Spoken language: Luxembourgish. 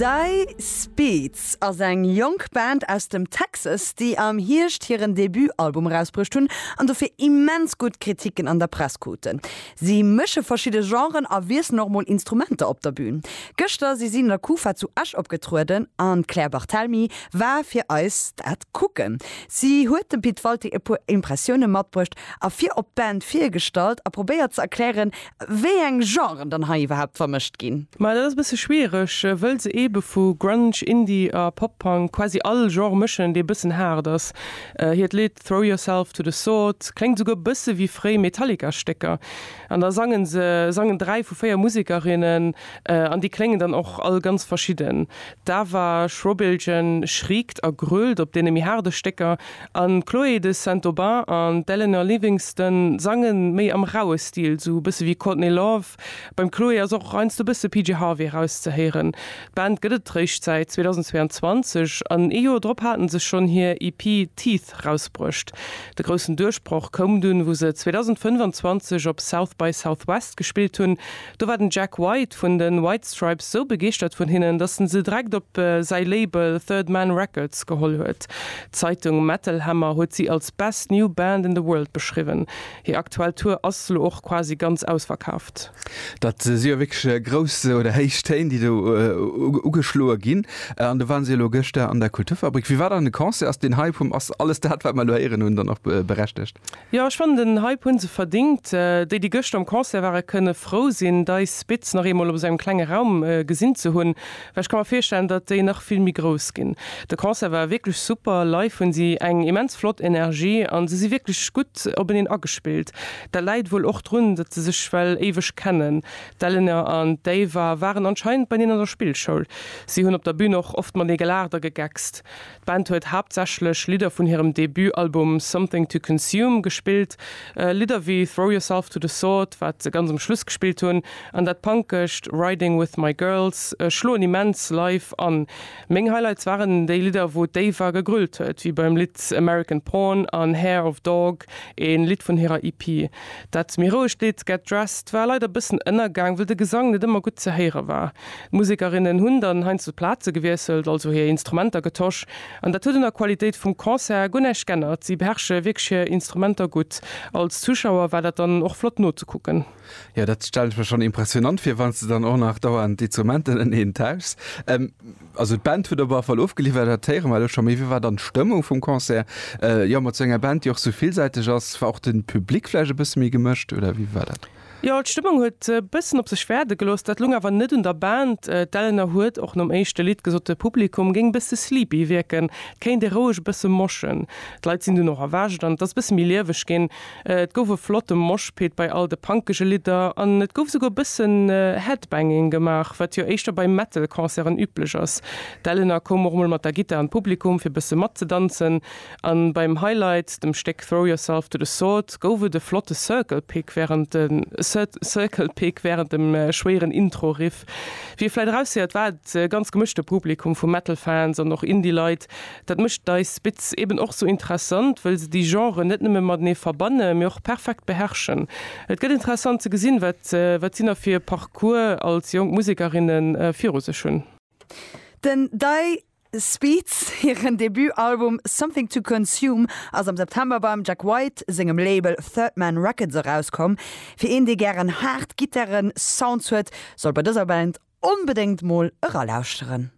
Dei Speeds ass eng jonk Band aus dem Texas, déi am Hierscht hiren Debutalbum erausbruecht hunn an dofir immens gutt Kritiken an der Press kruten. Si mësche verschidde Genren a wiesselen och mol Instrumenter op der Bün. Gëschter si si an der Kufa zu Esch opgetrueden an d'Claire Barthelmy war fir eis dat kucken. Si huet dem Pit Walté e puer Impressioune matbruecht a fir op d'Band virgestallt a probéiert ze erklären, wéi eng Genren dann hei iwwerhaapt vermëscht ginn. Ma dat ass e bësse schwiereg, wëll se eebe vu Grunge, Indie a Pop-Punk quasi all Genre mëschen, dee e bëssen haart ass. Hiert Lidd Throw Yourself to the Sword kléngt esouguer e bësse wéi fréi Metallica-Stécker. An da sangen se, sangen dräi vu véier Musekerinnen, an déi kléngen dann och all ganz verschidden. D'Ava Schrobiljan schriekt a grölt op deene méi haarde Stécker. An d'Chloé de Saint-Aubin an d'Eleanor Livingston sange méi am raue Stil, sou e bësse wéi Courtney Love. Beim Chloé ass och heiansdo e bësse PJ Harvey erauszehéieren. D'Band gëtt et réischt säit 2022, an ee Joer drop hate se schonn hir EP Teeth rausbruecht. De groussen Duerchbroch koum dunn, wou se 2025 op South by Southwest gespillt hunn, Do war den Jack White vun de White Stripes esou begeeschtert vun hinnen, datt en se direkt op säi Label Third Man Records geholl huet. D'Zeitung Metal Hammer huet si als Best New Band in the World beschriwwen. Hir aktuell Tour ass elo och quasi ganz ausverkaaft. Dat si jo wierklech grouss oder héich Téin, déi do ugeschloe ginn. An do ware si elo gëschter an der Kulturfabrik. Wie war dann de Concert? Ass den Hype vum Ass alles dat, wat mer elo héieren hunn, dann och berechtegt? Jo ech fannen den Hype hun se verdingt. Déi déi gëschter um Concert ware kënne frou sinn dei Spiz nach eemol op esou engem klenge Raum gesinn ze hunn, well ech ka mer virstellen datt déi nach vill méi grouss ginn. De Concert war wierklech super, live hunn si eng immens flott Energie an se si wierklech gutt openeen agespillt. Dat läit wuel och drun datt se sech well éiweg kennen. D'Eleanor an d'Ava waren anscheinend beineen an der Spillschoul. Si hunn op der Bühn och oft matenee gelaacht a gegeckst. D'Band huet haaptsächlech Lidder vun hirem Debut-Album Something to Consume gespillt, Lidder wéi Throw Yourself to the Sword, wat se ganz um Schluss gespillt hunn, an dat Punkescht Riding With My Girls schloen immens live an. Meng Highlights waren déi Lidder, wou d'Ava gegrölt huet, wéi beim Lidd American Porn an Hair of Dog, een Lidd vun hirer EP. Dat méi rouegt Lidd Get Dressed war leider bëssen ënnergaang, wëll de Gesang net ëmmer gutt ze héiere war. D'Musekerinnen hunn dann heiansdo d'Plaze gewiesselt, also hir Instrumenter getosch, an dat huet un der Qualitéit vum Concert guer näischt g'ännert. Si beherrsche wierklech hir Instrumenter gutt. Als Zuschauer war dat dann och flott nozekucken. Jo, dat stellen ech mer schonn impressionant vir, wann s de dann och nach dauernd d'Instrumenten ënnereen tauschs. Also d'Band huet op alle Fall ofgeliwwert, dat héiere mer elo scho. Mee wéi war dann d'Stëmmung vum Concert? Jo, mat esou enger Band, déi och esou villsäiteg ass, war och de Public vläicht e bësse méi gemëscht, oder wéi war dat? Jo, d'Stëmmung huet e bëssen op sech wäerde gelooss. Dat lung awer net un der Band. D'Eleanor huet och nom éischte Lidd gesot, de Publikum géing e bësse sleepy wierken, et kéint ee roueg e bësse moschen. D'Leit sinn dunn och erwächt an et ass e bësse méi lieweg ginn. Et gouf e flotte Moshpit bei all de punkege Lidder an et gouf esouguer e bëssen Headbanging gemaach, wat jo éischter bei Metal-Concerten üblech ass. D'Eleanor koum och mol mat der Gittar an d'Publikum, fir e bësse matzedanzen. An beim Highlight, dem Stéck Throw Yourself to the Sword, gouf et e flotte Circle Pick während Circle Pick während dem schwéieren Intro Riff. Wéi ee vläit eraushéiert war et e ganz gemëschte Publikum vu Metal Fans an och Indie Leit. Dat mécht Dice Spitz eben och sou interessant, wëll se déi Genren net nëmme matenee verbanne mee och perfekt beherrschen. Et gëtt interessant ze gesinn wat wat si nach fir e Parcours als jonk Musekerinnen viru sech hunn. Den Dice. Speeds hiren Debutalbum Something to Consume ass am September beim Jack White sengem Label Third Man Records erauskomm. Fir een dee gären haart Gittare-Sounds huet, sollt bei dëser Band onbedéngt mol eralauschteren.